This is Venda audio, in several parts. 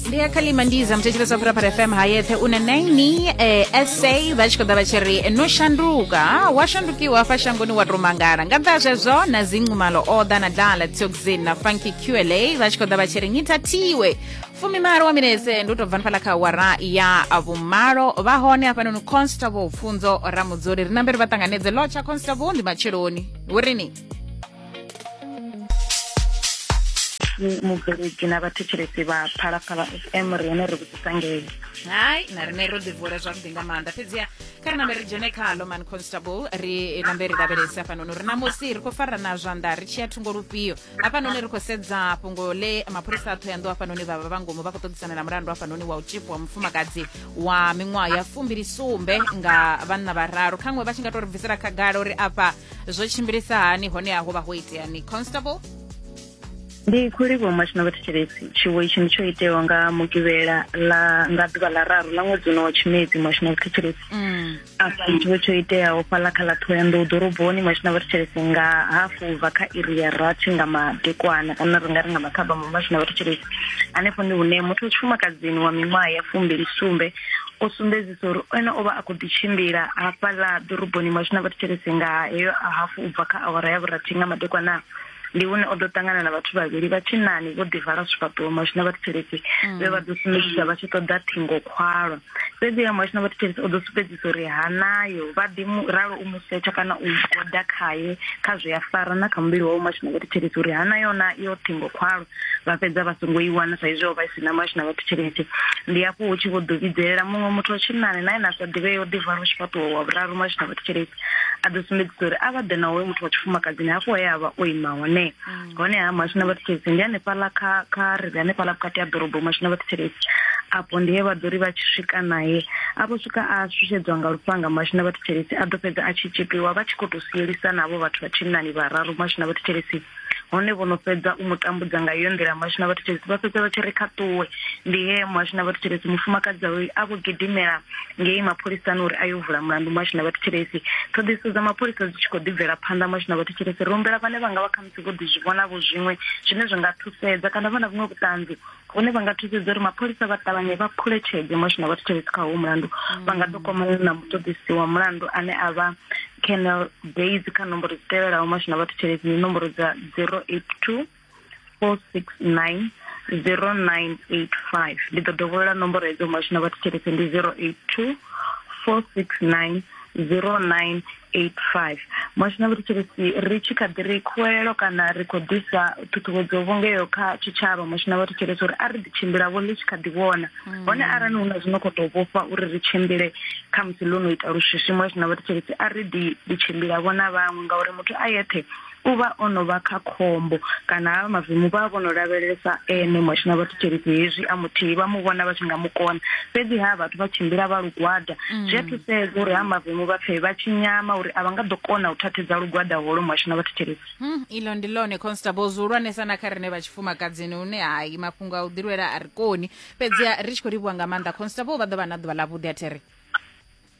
ndi ya khalima ndiza muthetshelo sa phuraphara fm hayethe u na 9 eh, sa vha tshi khou ḓa vha tshi ri no shanduka ha, wa shandukiwa hafha shangoni wa tou mangala nga nnḓa ha zwezwo na dzinqumalo oda na dala tioxin na funky qla vha tshi khou ḓa vha tshi ri ni thathiwe fumimalo wa minetse ndi u tou bva nifhala kha wara ya vhumalo vha hone hafhanoni constable pfunzo ramudzoli ri namberi vha ṱanganedze lotsha constable ndi matsheloni hu rini mubveledzi na vhathetshelesi vha phalaphala fm ri hone ri vhudzisa ngei hai na rine ro ḓivula zwavhuḓi nga maanḓa fhedziha kha ri nambe ri dzhene khalo man constable ri nambe ri lavhelese hafhanoni uri namusi ri khou farana zwanḓa ri tshiya thungo lufhio hafhanoni ri khou sedza fhungo ḽe mapholisa a thohoyanḓou hafhanoni vha vha vha ngomu vha khou ṱoḓisana na mulandu hafhanoni wa u tshipo wa mufumakadzi wa miṅwaha ya fumbili sumbe nga vhanna vhararu khaṅwe vha tshi nga to ri bvisela khagala uri afha zwo tshimbilisa hani hone a ho vha ho iteani constable ndi khou livhuwa mashina vhathetshelesi tshiwo itshi ndi tsho itewa nga mugivhela la nga ḓuvha ḽa raru ḽa ṅwedzi uno wa tshimedzi mashina vhathetshelesi mm. afha tshiwo tsho iteaho fhaḽa kha ḽa ṱhohoyanḓou ḓoroboni mashina vhathetshelesi nga hafu bva kha iri ya rathi nga madekwana kana ri nga ri nga makhaba ma mashina vhathetshelesi hanefho ndi hune muthu wa tshifumakadzini wa miṅwaha ya fumbili sumbe o sumbedzi so uri ene o vha a khou ḓi tshimbila hafhaḽa ḓoroboni mashu na vhathetshelesi nga heyo a hafu u bva kha awara ya vhurathi nga madekwana ndi hune o ḓo ṱangana na vhathu vhavhili vha tshinani vho ḓivala zwifhaṱuwo mashu na vhathetshelesi mm. vhe vha ḓo sumbedzisa vha tshi ṱoḓa ṱhingo khwalwa fhedzi ya mashu na vhathetshelesi o ḓo sumbedzisa uri ha nayo vha ḓi ralo u musetsha kana u goda khaye kha zwi a fara na kha muvhili wawe mashu na vhathetshelesi uri ha nayo na yo ṱhingo khwalwa vha fhedza vha songo i wana saizwi o vha i si na mashu na vhathu tshelede ndi hafho hu tshi vho ḓo vhidzelela muṅwe muthu wa tshinnani naye na sa ḓivhe yo ḓivara u tshi fhaṱuwa wa vhuraru mashu na vhathu tshelede a ḓo sumbedzisa uri a vha ḓe na hoyo muthu wa tshifumakadzini hafho he a vha o ima hone mm. hone ha mashu na vhathu tshelede ndi hanefhaḽa kha kha ri ri hanefhaḽa vhukati ha ḓorobo mashu na vhathu tshelede afho ndi he vha ḓo ri vha tshi swika naye a vho swika a shushedzwa nga lufhanga mashu na vhathu tshelede a ḓo fhedza a tshi tshipiwa vha tshi khou tou sielisana havho vhathu vha tshinnani vhararu mashu na vhathu tshelede hone vho no fhedza u mu tambudza nga iyo nḓila muhasho na vhathu thethesi vha fhedza vha tshi ri kha ṱuwe ndi he muhasho na vhathu thethesi mufumakadzi awe a vho gidimela ngei mapholisani uri a yo vula mulandu muhasho na vhathu thethesi ṱhoḓiso dza mapholisa dzi tshi khou ḓibvela phanḓa muhasho na vhathu thethesi ri humbela vhane vha nga vha khamusi vho ḓi zwi vhonavho zwiṅwe zwine zwi nga thusedza kana vha na vhuṅwe vhuṱanzi hone vha nga thusedza uri mapholisa vha ṱavhanye vha phule tshenzhemo zwine vha thetshelesi kha howu mulandu mm. vha nga ḓo kwamana na muṱoḓisi wa mulandu ane a vha canal bas kha nomboro dzi tevhelaho mashina vha thetshelesi ndi nomboro dza zero eight two four six nine zero nine eight five ndi ḓo dovholola nomboro hedzo mashina vha thetshelesi ndi zero eight two four six nine zero nine 85 moshina uri tshirisi ri tshi kha ḓi ri khuwelelo kana ri khou ḓisa ṱhuṱhuwedzo vhungeyo kha tshitshavha moshina vha ri tshirisi uri a ri ḓi tshimbila vho ḽi tshi kha ḓi vhona mm. hone arali hu na zwino khou tou vhofha uri ri tshimbile kha musi ḽo no ita luswiswi moshina vha ri tshirisi a ri ḓi ḓi tshimbila vhona vhaṅwe ngauri muthu a yeṱhe u vha o no vha kha khombo kana havha mavemu vha vho no lavhelesa ene mwashina vha thetshelesi hezwi a muthihi vha mu vhona vha tshi nga mu kona fhedzi ha vhathu vha tshimbila vha lugwada mm. zwi a thusedza uri ha mavemu vha pfhe vha tshi nyama uri a vha nga ḓo kona u thathedza lugwada holo mwashina vha thetshelesi hmm, ilo ndi lone constable zwihulwanesa na kha rine vha tshifumakadzini hune hai mafhungo a u ḓilwela a ri koni fhedzi ri tshi khou livhuwa nga maanḓa constable vha ḓo vha na ḓuvha ḽa vhuḓi a theri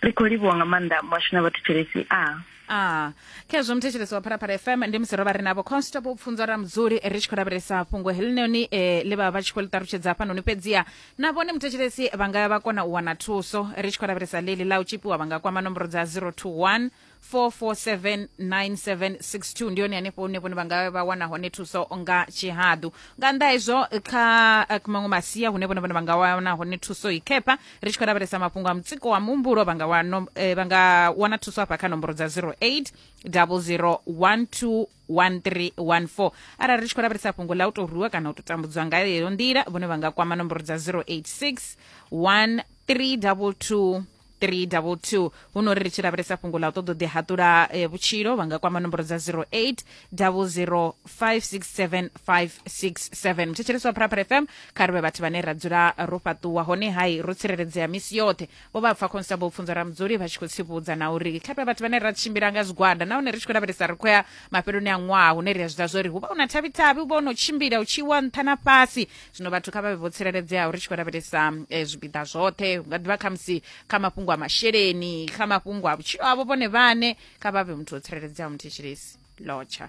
ri khou livhuwa nga maanḓa muhashu na vhathetshelesi a a khezwo muthetshelesi wa pharapara fm ndi musi ro vha ri navho constable pfunzo ra mudzuli ri tshi khou lavhelesa fhungo helinoni e ḽi vha vha tshi khou ḽi ṱalutshedza hafhanoni fhedziha na vhone muthetshelesi vha nga vha kona u wana thuso ri tshi khou lavhelesa ḽeḽi ḽa u tshipiwa vha nga kwama nomboro dza 021 4479762 ndi yone hanefho hune vhone vha nga vha wana hone thuso nga tshihaḓu nga nnḓa hezwo kha eh, maṅwe masia hune vhone vhone vha nga wana hone thuso i khepha ri tshi khou lavhelesa mafhungo a mutsiko wa muhumbulo vha nga wa nom- eh, vha nga wana thuso hafha kha nomboro dza 08 0012 1314 arali ri tshi khou lavhelesa fhungo ḽa u tou rwiwa kana u tou tambudzwa nga yeyo nḓila vhone vha nga kwama nomboro dza 086 1322 322 huno ri ri tshi lavhelesa fhungo ḽa u ṱoḓa u ḓihaṱula eh, vhutshilo vha nga kwama nomboro dza 08 00 567 567 muthetshelesi wa pharapara fm kha ri vhe vhathu vhane ra dzula ro fhaṱuwa hone hai ro tsireledzea misi yoṱhe vho vha pfa constable u pfunza ramudzuli vha tshi khou tsivhudza na uri kha ri vhe vhathu vhane ra tshimbila nga zwigwada nahone ri tshi khou lavhelesa ri khou ya mafheloni a ṅwaha hune ri a zwi ḓivha zwori hu vha hu na thavhi-thavhi hu vha hu no tshimbila u tshi wa nṱha na fhasi zwino vhathu kha vha vhe vho tsireledzeaho ri tshi khou lavhelesa eh, zwipiḓa zwoṱhe hu nga ḓivha khamusi kha mafhungo a masheleni kha mafhungo a vhutshilo avho vhone vhane kha vha vhe muthu wo tsireledzeaho muthetshelesi lotsha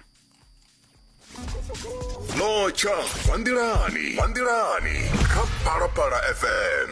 notsha vha nḓilani vha nḓilani kha phalaphala fm